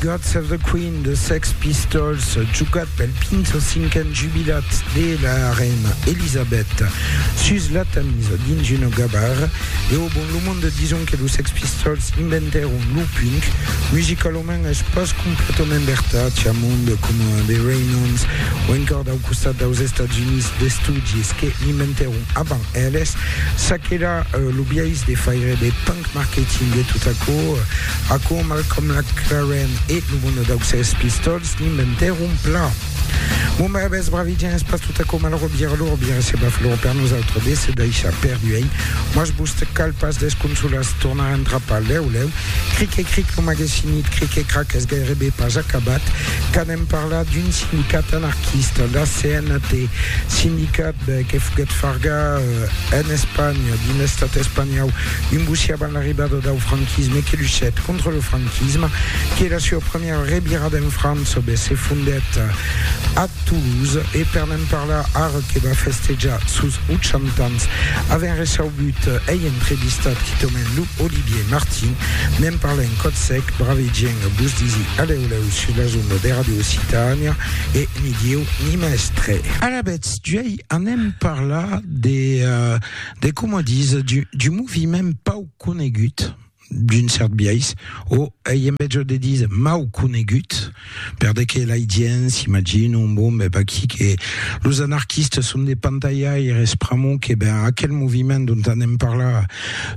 God Save the Queen de Sex Pistols, jugat pel 25n jubilat de la reina Elisabeth sus la Tamise dins una gabara. E au bon, lo monde dison que los Sex Pistols inventèron lo punk. Musicalament es pas completament vertat, i a monde coma The Ramones o encòr dau costat daus Estats Units d'estudis que l'inventèron avant Eles, ça qu'èra lo biais de faire de punk marketing e tot aquò, aquò Malcolm McLaren e lo bono dau Sex Pistols n'inventèron plan. Bon brabes, bravidien es pas tot aquò malrò vier lor vier se va flor per nosautres de se daishar per duenh, mas vos te cal pas desconsolas tornar entrapar lèu lèu, cric e cric lo magesinit cric e crac es gairebe pas acabat, Hem parlat d'un sindicat anarquista, la CNT, sindicat que foguèt fargar en Espanha, dins l'estat espanhòu, un bocí avant l'arribada dau franquisme que luchèt contra lo franquisme, que la sua premiera revirada en França be se fondèt a Toulouse e per ne'n parlar ara que va festejar sos 80 ans, avèm resaubut ei entrevistat quitament lo Olivier Martin, ne'n parlèm còth sec, bravegien vos disi alèu. Lèu sus la zona de Radio Occitània e ni dieu ni mèstre. Alavetz, d'uèi anem parlar de, de coma dis, du, du moviment pau conegut, d'un cert biais, o ei en mètge de dis mau conegut, per de que lai gents s'imaginon, bon, ben vaquí que los anarquistes son de pantaiaires, pr'amor que, ben, aquel moviment dont anem parlar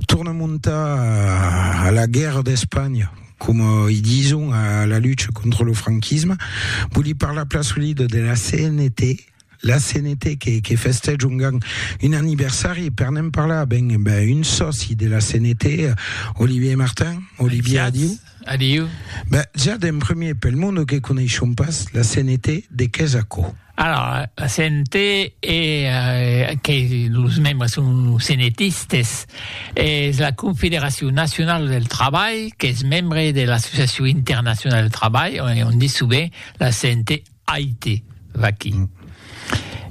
torna montar a la guèrra d'Espanha, coma i dison a la lucha contra lo franquisme, voli parlar plasolida de la CNT, la CNT que, que festèja un gang un anniversari, e per ne'n parlar, ben, ben un sòci de la CNT, Olivier Martin. Olivier, adiu. Adiu. Ben, ja d'en premier, pel monde que coneishon pas la CNT, de qu'es aquò? Alara, la sente e que los membres son senetistes, es la Confederacion Nacionala del Trabalh qu'es membre de l'Associacion Internacionala del Trabalh, on ditz sovent la sente AIT, vaquí.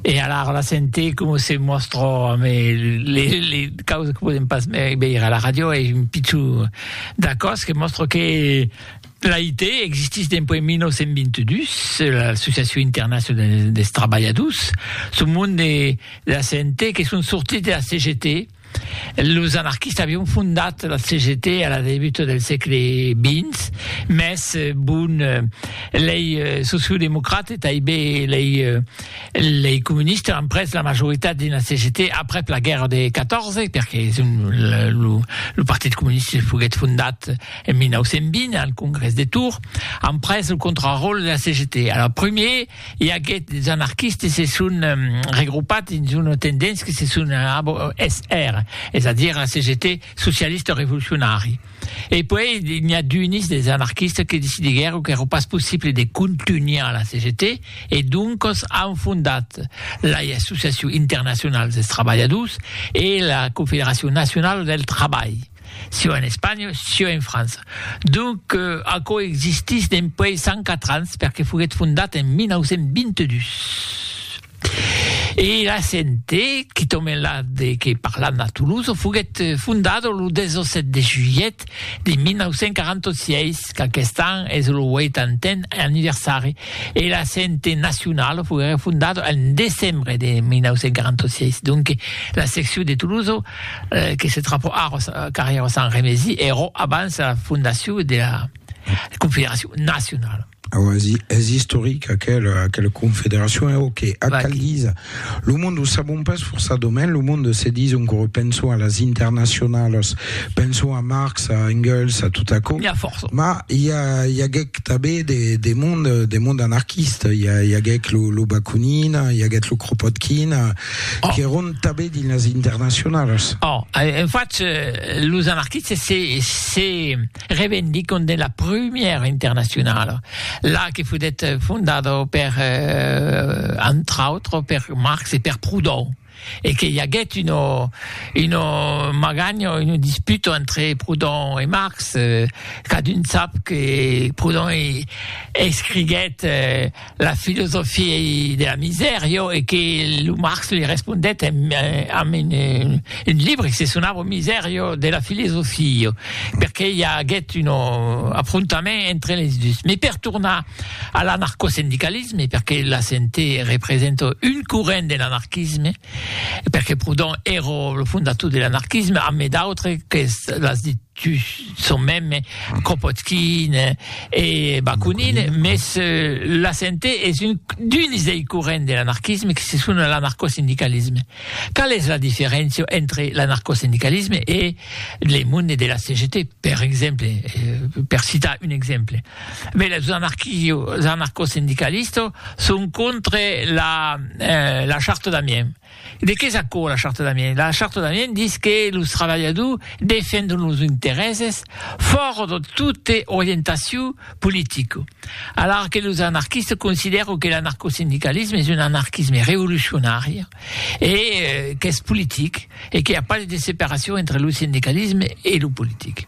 E alara la sente coma se mòstra amb li causas que podèm pas veire a la ràdio, es un pichon d'acòst que mòstra que L'AIT existís dempuèi 1922, l'Associacion Internacionala dels Trabalhadors, son mond de la CNT que son sortits de la CGT. Los anarquistas avián fondat la CGT a la debuta del sègle XX, mès bon, lei sociodemocrats e taiben lei lei comunistas an prés la majoritat dins la CGT aprèp la guèrra de 14, perque son lo lo partit comunista foguèt fondat, En 1920, al Congrès de Tours, an pres lo contraròtle de la CGT. Alors, primier, i aguèt des anarquistes se son regrupat dins una tendéncia que se son SR, es a dire la CGT socialista revolucionari. E puèi, n'i a d'unis des anarquistes que decidiguèron qu'èra pas possible de contunhar la CGT e doncas an fondat lai Associacion Internacional dels Trabalhadors e la Confederacion Nacionala del Trabalh. sieu en Espanha, sieu en França. Donc, aquò existís dempuèi 104 ans, perque foguèt fondat en 1922. E la CNT, que tòmen la de que parlan a Toulouse, foguèt fondada lo 17 de julhet de 1946, qu'aquest an es lo 80n anniversari, e la CNT nacionala foguèra fondada en decembre de 1946. Donc, la seccion de Toulouse que se trapò aros carrièr Sant Remesi ero abans la fondacion de la Confederacion Nacionala. Awa, es istoric aquel, aquel confederacion, e ok, ac cal disa, lo monde o sabon pas forçadament, lo monde se dison que repenson a las internacionalas, penson a Marx, a Engels, a tot aquò, ma i a, i aguèc tabé de, de monde, de monde anarquista, i a, i aguèc lo, lo Bakunin, i aguèt lo Kropotkin, qu'èron tanben dins las internacionalas. Oh, en fach, los anarquistes se, se revendiquon de la prumièra internacionala, la que foguèt fondada per, entre autres, per Marx e per Proudhon, e que i aguèt una, una maganha, una disputa entre Proudhon e Marx, cadun sap que Proudhon escriguèt, La filosofia de la misèr, jo, e que lo Marx li respondèt amb un libre que se sonava Miserio de la filosofia, perqué i aguèt un afrontament entre les dus. Mès per tornar a l'anarcosindicalisme, perqué la CNT representa un corrent de l'anarquisme, Perque Proudhon ero lo fondator de l'anarquisme, ame d'autres que l'as dit tu son meme, Kropotkin e Bakunin, mes la CNT es un d'uns dei corrents de l'anarquisme que se sona l'anarcosindicalisme. Qual es la diferéncia entre l'anarcosindicalisme e le monde de la CGT, per exemple, per citar un exemple? Beh, los anarquistes, anarcosindicalistes, son contra la, eh, la charta d'Amiens. De qué s'accord la charta d'Amiens? La charta d'Amiens dit que los trabalhadors defendon los interèses fòrt de tota orientacion politica. Alara que los anarquistes considèron que l'anarcosindicalisme es un anarquisme revolucionari e eh, qu'es politic e que i a pas de separacion entre lo sindicalisme e lo politic.